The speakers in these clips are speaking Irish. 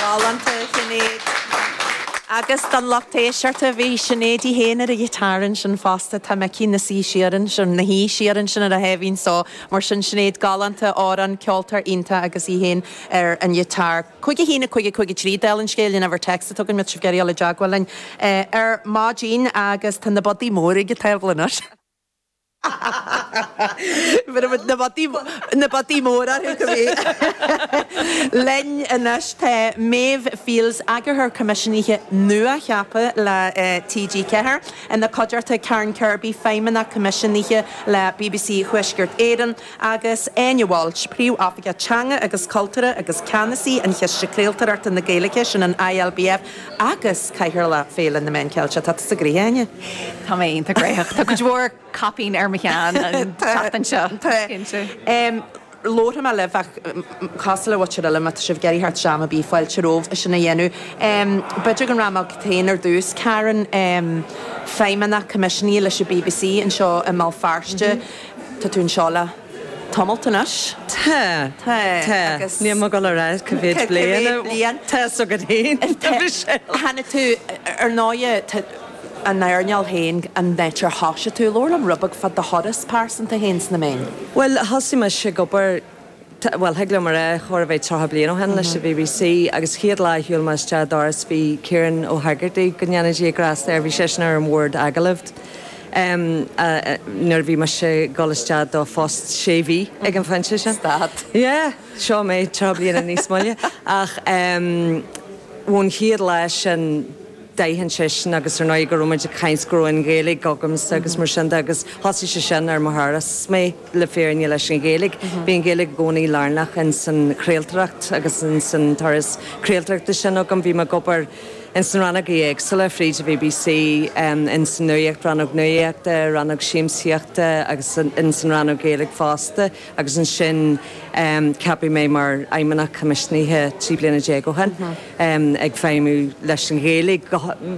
Galánta, Sinéad. Agus don lucht éisteachta, bhí Sinéad í féin ar an ghiotár ansin fosta, tá Micí ina shuí siar ansin, ina shuí siar ansin ar a sháimhín só. Mar sin, Sinéad galánta, amhrán, ceoltóir iontach agus í féin ar an ghiotár. Cúig a haon a cúig a cúig a trí, déan an scéal a dhéanamh ar téacs chugainn má tá sibh ag iarraidh dul i dteagmháil linn ar maidin agus tá na bodaí móra ag tabhairt linn ar. Na bodaí móra thú go minic! Linn anois tá Máire Fields, Eagarthóir Coimisiúnaithe nua-cheaptha le TG4, ina cuideachta, Karen Kirby, Feidhmeannach Coimisiúnaithe le bbc Thuaisceart Éireann, agus Áine Walsh, Príomhoifigeach Teanga agus Cultúir agus Ceannasaí ar Chiste Craoltóireachta na Gaeilge, sin an ILBF, agus Cathaoirleach Féile na Meán Ceilteach. Tá tusa gnoitheach, a Áine! Tá mé iontach gnoitheach. Tá cuid mhór caipín ar mo cheann an tseachtain seo, is cinnte. Labharfaidh mé libh ach cosúil le do Uilliam má tá sibh ag iarraidh theacht isteach am ar bith, fáilte romhaibh é sin a dhéanamh. B'fhéidir go rachaidh mé chugat féin ar dtús, Karen, Feidhmeannach Coimisiúnaithe leis an bbc anseo i mBéal Feirste. Tá tú anseo le tamalt anois. Tá. Tá. Tá. Agus. Níl mé ag dul a rá cá mhéad bliain. Cá mhéad bliain. Tá so go dtín. Tá. Michelle. Tháinig tú, ar ndóighe, tá an earnáil féin, an áit ar thosaigh tú, labhair liom rud beag fá do thuras pearsanta féin sna meáin. Bhuel, thosaigh mise ag obair Tá, bhuel, thig liom a rá, chóir a bheith tríocha bliain ó shin leis an BBC agus chéad lá a shiúil mé isteach an doras bhí Kieran Ó hÉigeartaigh, go ndéana Dia grásta air, bhí seisean ar an bhord agallaimh nuair a bhí mise ag dul isteach do phost sé mhí ag an phointe sin. Stad. Yeah, seo mé tríocha bliain níos moille ach ón chéad lá sin d'aithin seisean agus ar ndóigh go raibh muid ag caint, go raibh an Ghaeilge agamsa agus mar sin de agus thosaigh seisean ar mo thuras mé. le fírinne leis an Ghaeilge. Bhí an Ghaeilge i gcónaí lárnach ins an chraoltóireacht agus ins an turas craoltóireachta sin agam. Bhí mé ag obair ins na rannogaí éagsúla fríd an BBC, ins an nuaíocht, rannóg nuaíochta, rannóg siamsaíochta agus ins an rannóg Ghaeilge fosta agus ansin ceapadh mé mar fheidhmeannach coimisiúnaithe trí bliana déag ó shin, ag feidhmiú leis an Ghaeilge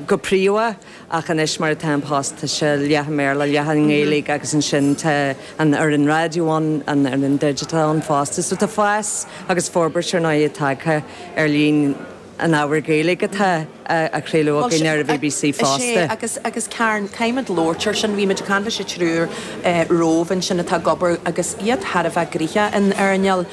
go príomha. Ach anois, mar atá an post, tá sé leath i mBéarla, leath i nGaeilge agus ansin tá an fhoireann raidió ann, an fhoireann digital ann fosta. So tá fás agus forbairt, ar ndóigh, tagtha ar líon an ábhair Ghaeilge atá á chraoladh againn ar an bbc fosta. Sea, agus Karen, caithfimid labhairt air sin. Bhí muid ag caint leis an triúr romhaibh ansin atá ag obair agus iad thar a bheith gnoitheach in earnáil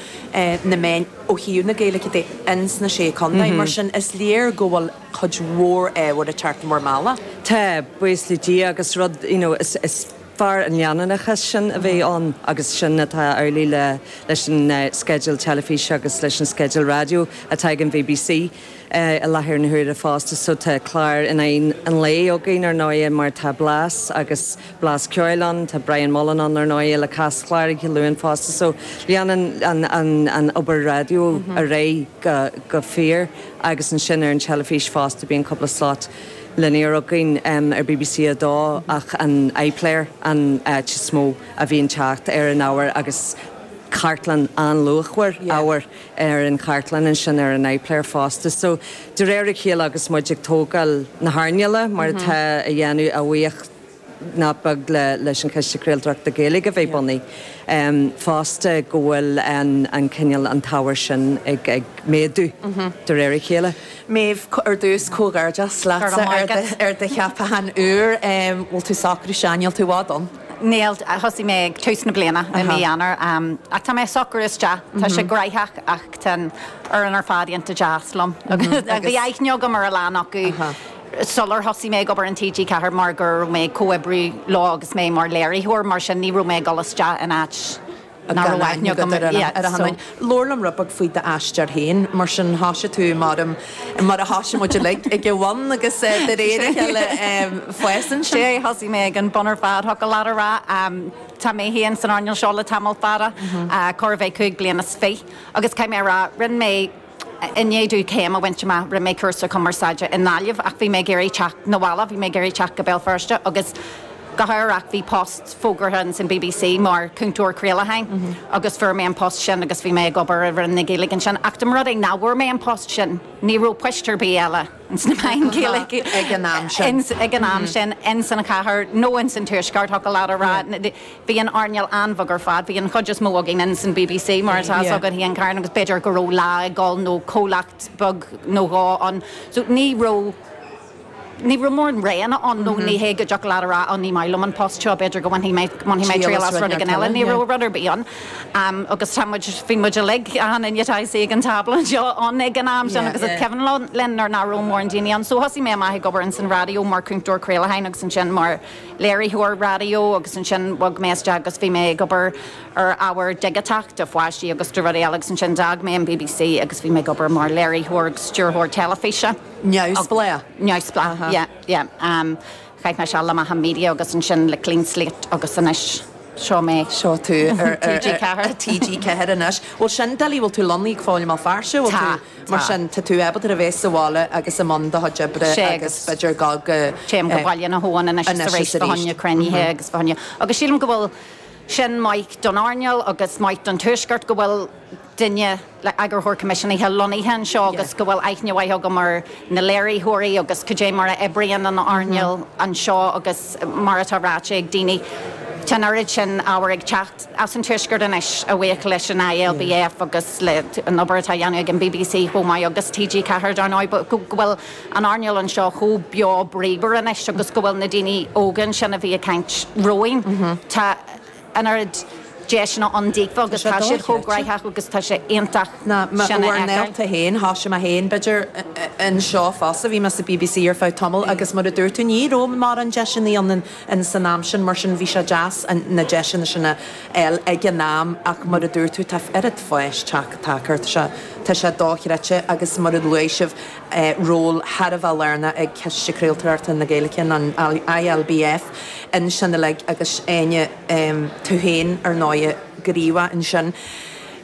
na meán ó thaobh na Gaeilge de ins na Sé Chontae. Mar sin, is léir go bhfuil. cuid mhór ábhair atá ar ardán amháin. Tá, buíochas le Dia, agus rud, you know, is, is fearr an leanúnachas sin a bheith ann agus sin atá amhlaidh le, leis an sceideal teilifíse agus leis an sceideal raidió atá ag an bbc i láthair na huaire fosta. So tá cláir in aghaidh an lae againn ar ndóighe mar tá Blas agus Blas Ceoil ann, tá Brian Mullen ann ar ndóighe le Caschlár oíche Luain fosta. So leanann an, an, an obair raidió ar aghaidh go fóill. agus ansin ar an teilifís fosta bíonn cúpla slot linear againn ar bbc a dó ach an iPlayer an áit is mó a bhíonn teacht ar an ábhar agus cartlann an-luachmhar ábhair ar an chartlann ansin ar an iPlayer fosta so de réir a chéile agus muid ag tógáil na hearnála mar atá á dhéanamh, a bhuíochas nach beag leis an Chiste Craoltóireachta Gaeilge a bheith bunaithe fosta go bhfuil an cineál, an t-ábhar sin ag méadú de réir a chéile. Méabh, ar dtús, comhghairdeas leatsa ar do cheapachán úr. Bhfuil tú socraithe isteach, níl tú i bhfad ann? Níl, thosaigh mé ag tús na bliana, i mí Eanáir, ach tá mé socraithe isteach. Tá sé gnaitheach ach tá an fhoireann ar fad iontach deas liom. Bhí aithne agam ar a lán acu. sular thosaigh mé ag obair in TG4 mar go raibh mé ag comhoibriú leo agus mé mar léiritheoir, mar sin ní raibh mé ag dul isteach in áit nach raibh aithne agam uirthi. Labhair liom rud beag faoi d'aistear féin, mar sin thoisigh tú muraim, mar a thoisigh muid uilig, ag an bhun agus de réir a chéile fás ansin. Thosaigh mé ag an bun ar fad, thiocfadh leat a rá. Tá mé féin san earnáil seo le tamall fada, chóir a bheith cúig bliana is fiche, agus caithfidh mé a rá, rinne mé, I ndiaidh dom céim a bhaint amach, rinne mé cúrsa cumarsáide i nGaillimh ach bhí mé ag iarraidh teacht 'na bhaile, bhí mé ag iarraidh teacht go Béal Feirste agus go hádhúil bhí post fógartha ins an BBC mar chúntóir craolacháin agus fuair mé an post sin agus bhí mé ag obair i Roinn na Gaeilge ansin ach dá mba rud é nach bhfuair mé an post sin, ní raibh poist ar bith eile. le Gaeilge ag an am sin ins an chathair nó ins an tuaisceart, thiocfadh leat a rá. Bhí an earnáil an-bheag ar fad. Bhí an chuid is mó againn ins an BBC, mar atá fhios agat, féin, a Karen, agus b'fhéidir go raibh Lá ag dul nó comhlacht beag nó dhó ann. So ní raibh, ní raibh mórán roghanna ann nó ní hé go dtiocfadh leat a rá, á ní maith liom an post seo, b'fhéidir go bhainfidh mé triail as rud éigin eile. Ní raibh rud ar bith ann. Am, agus tá muid, bhí muid uilig ann aon duine atá ag an tábla anseo, ann ag an am sin, agus is cuimhin linn nuair nach raibh mórán daoine ann. So thosaigh mé amach ag obair ins an raidió mar chúntóir craolacháin agus ansin mar léiritheoir raidió agus ansin bhog mé isteach agus bhí mé ag obair ar ábhar digiteach do pháistí agus do rudaí eile agus ansin d'fhág mé an BBC agus bhí mé ag obair mar léiritheoir agus stiúrthóir teilifíse. Neamhspleách? Neamhspleách, yeah, yeah. Chaith mé seal le Macha Media agus ansin le Clean Slate agus anois seo mé. Seo tú ar TG4 anois. Bhuel sin doiligh, bhfuil tú lonnaithe i mBéal Feirste, bhfuil tú, mar sin tá tú ábalta a bheith sa bhaile agus i mbun do chuid oibre agus b'fhéidir go. Téim go Baile na hAbhann anois is arís, fá choinne cruinnithe agus fá choinne, agus sílim go bhfuil sin maith don earnáil agus maith don tuaisceart go bhfuil, duine, Eagarthóir Coimisiúnaithe lonnaithe anseo agus go bhfuil aithne mhaith agam ar na léiritheoirí agus cad é mar a oibríonn an earnáil anseo agus mar atá ráite ag daoine, tá an oiread sin ábhar ag teacht as an Tuaisceart anois a bhuí leis an ILBF agus leis an obair atá á dhéanamh ag an bbc chomh maith agus TG4 dar ndóigh, go bhfuil an earnáil anseo chomh beo bríomhar anois agus go bhfuil na daoine óga ansin a bhí ag caint romhainn, tá. an oiread deiseanna ann daofa Tá agus sé tá siad chomh dochreidte. gnóthach agus tá sé iontach Na, ma, sin a fheiceáil. néalta fhéin, thosaigh mé fhéin b'fhéidir anseo fosta, bhí mé sa BBC ar feadh tamall agus mar a dúirt tú ní raibh mórán deiseanna ann in, in, san am sin mar sin bhí sé deas an, na deiseanna sin a fháil ag an am ach mar a dúirt tú tá oiread fáis teach, tagtha, tá sé, tá sé dochreidte agus mar a luaigh sibh, ról thar a bheith lárnach ag Ciste Craoltóireachta na Gaeilge, an ILBF, ansin uilig agus Áine, tú féin, ar ndóigh, go rímhaith ansin.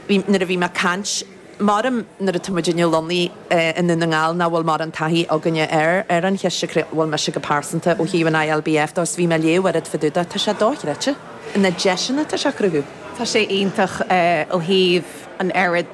Bhí, nuair a bhí mé ag caint, m'orm, nuair atá muid inniu lonnaithe i nDún na nGall, nach bhfuil mórán taithí againne air, ar an Chiste Craol, bhuel, mise go pearsanta, ó thaobh an ILBF de, is bhí mé ag léamh oiread fá dtaobh de, tá sé dochreidte, na deiseanna atá sé a chruthú. Tá sé iontach ó thaobh an oiread.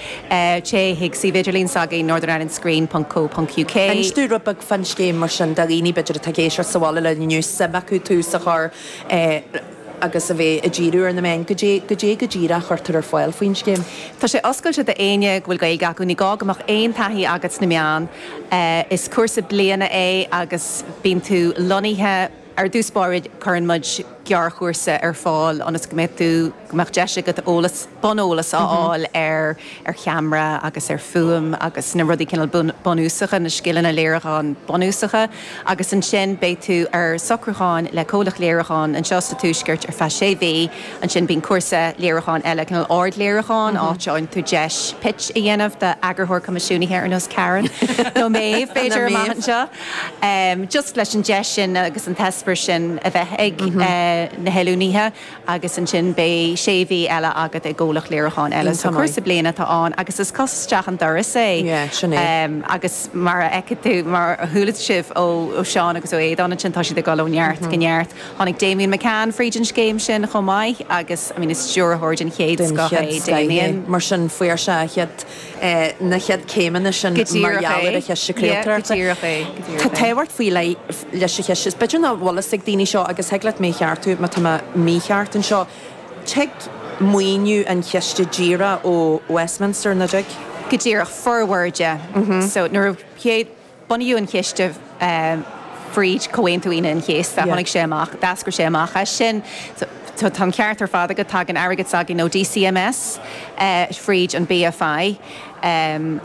Téigh chuig suíomh idirlín s'againn, northernirelandscreen.co.uk. Inis dúinn rud beag fán scéim mar sin, do dhaoine b'fhéidir atá ag éisteacht sa bhaile a mbeadh suim acu tús a chur le agus a bheith ag díriú ar na meáin, cad é go díreach a chuirtear ar fáil faoin scéim? Tá sé oscailte do éinne go bhfuil Gaeilge acu, ní gá go mbeadh aon taithí agat sna meáin. Is cúrsa bliana é agus bíonn tú lonnaithe. Ar dtús báire, cuireann muid gearrchúrsa ar fáil ionas go mbeidh tú, go mbeadh deis agat eolas, buneolas a fháil ar cheamara agus ar fhuaim agus na rudaí cineál bunúsacha, na scileanna léiriúcháin bunúsacha. Agus ansin beidh tú ar socrúchán le comhlacht léiriúcháin anseo sa Tuaisceart ar feadh sé mhí. Ansin bíonn cúrsa léiriúcháin eile, cineál ardléiriúcháin, áit a fhaigheann tú deis pitch a dhéanamh d'eagarthóir coimisiúnaithe ar nós Karen nó mé, b'fhéidir, amach anseo. just leis an deis sin agus an t-eispéireas sin a bheith ag na hoiliúnaithe agus ansin beidh sé mhí eile agat i gcomhlacht léiriúcháin eile. So cúrsa bliana atá ann agus is cos isteach an doras é agus mar a fheicfidh tú, mar a chuala sibh ó Sheán agus ó Aodán ansin, tá siad ag dul ó neart go neart. Tháinig Damian McCann fríd an scéim sin chomh maith agus, I mean, is stiúrthóir den chéad scoth é Damian. Mar sin, fuair sé a chéad. na chéad céimeanna sin mar gheall ar an Chiste Craoltóireachta. Tá tábhacht faoi leith leis an chiste. Is b'fhéidir nach bhfuil fhios ag daoine seo agus thig leat mé a cheartú má tá mé mícheart anseo. Tig maoiniú an chiste díreach ó Westminster, nach dtig? Go díreach. Formhór de. So nuair a chéad. Bunaíodh an chiste fríd Chomhaontú Aoine an Chéasta, tháinig sé amach, d'eascair sé amach as sin. Tá an ceart ar fad agat, tagann airgead s'againn ó DCMS fríd an BFI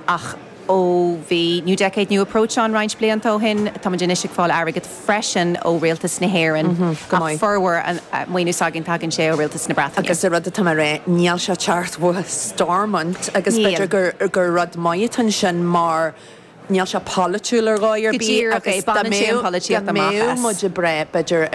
ach ó bhí New Decade, New Approach ann roinnt blianta ó shin, táimid anois ag fáil airgead freisin ó Rialtas na hÉireann ach formhór an maoiniú s'againn, tagann sé ó Rialtas na Breataine. Agus rud atá mé a rá, níl sé ag teacht ó Stormont agus b'fhéidir gur rud maith atá ansin mar, Níl sé polaitiúil ar dhóigh ar bith agus dá mbeadh, dá mbeadh muid ag brath, b'fhéidir, ar.